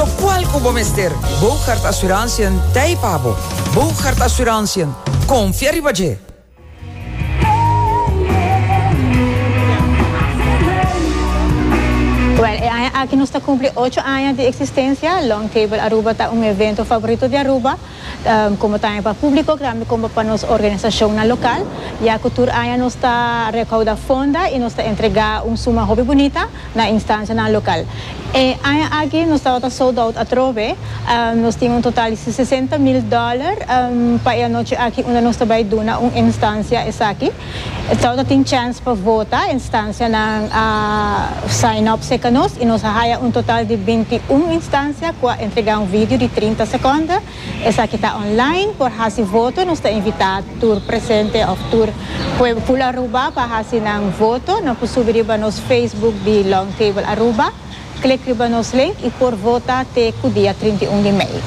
Tok kual ku bo mester, Boogaard Assurantiën t'ei pa bo. Boogaard Assurantiën, konfia riba dje! Wèl, e aña aki nos ta kumpli ocho aña di eksistensia. Long Table Aruba ta un evento favorito di Aruba. Como tambe pa publico grambi como pa nos organisacionnan local, ya cu tur aña nos ta recauda fonda y nos ta entrega un suma hopi bunita na instancianan local. E aña aki nos tabata sold out atrobe, nos tin un total di sesenta mil dollar pa e anochi aki unda nos ta bay duna un instancia esaki. E trouw ta tin chèns pa vota, instansianan a sign up serka nos i nos a haya un total di binti un instansia ku a entregá un video di trinta sekonda. Esaki ta online. Por hasi voto nos ta invitá tur presente òf tur pueblo Aruba pa hasi nan voto. Nan por subi riba nos Facebook di Long Table Aruba. Klik riba nos link i por vota te ku dia trinta i un di mei.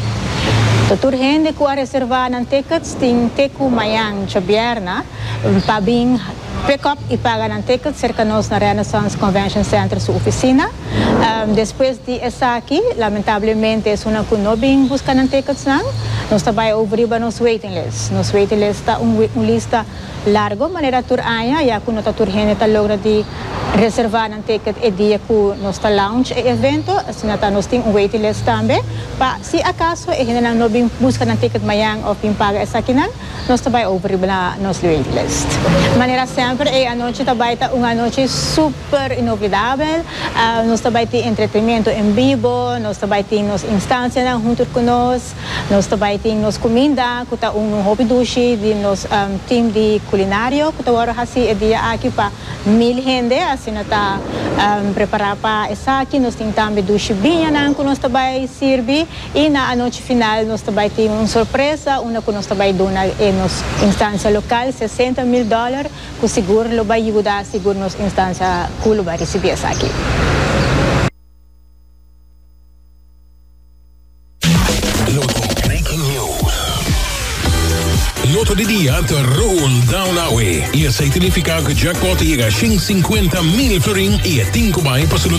Ta tur hende ku a reservá nan tèkets tin te ku mañan djobièrna pa bin pekòp i paga nan tèkets serka nos na Renaissance Convention Center su ofisina. Despues di esaki lamentablemente esunnan ku no bin buska nan tèketsnan nos ta bai over riba nos waiting list. Nos waiting list ta un lista. Largo manera tur aña ya cu no ta tur hende ta logra di reserva nan ticket e dia cu nos ta launch e evento, asina ta nos tin un waiting list tambe. Pa si acaso e hendenan no bin busca nan ticket mayan of bin paga esakinan, nos ta bay over riba na nos waiting list. Manera semper e anochi ta bay ta un anochi super inoblidabel. Nos ta bay tin entretenimento en bibo, nos ta bay tin nos instancianan hunter cu nos. Nos ta bai tin nos cuminda cu ta un un hopi dushi di nos team di culinario cu ta worde haci e dia aki pa mil hende asina ta prepara pa esaki nos tin tambe dushi biñanan cu nos ta bai sirbi y na anochi final nos ta bai tin un sorpresa unda cu nos ta bai duna e nos instancia local sesenta mil dollar cu sigur lo bai yuda sigur nos instancia cu lo bai ricibi esaki. Loto Breaking News. Loto di dia ta roll down awe y esey tinifica cu jackpot ta yega shin cincuenta mil florin y e tin cu bay pa su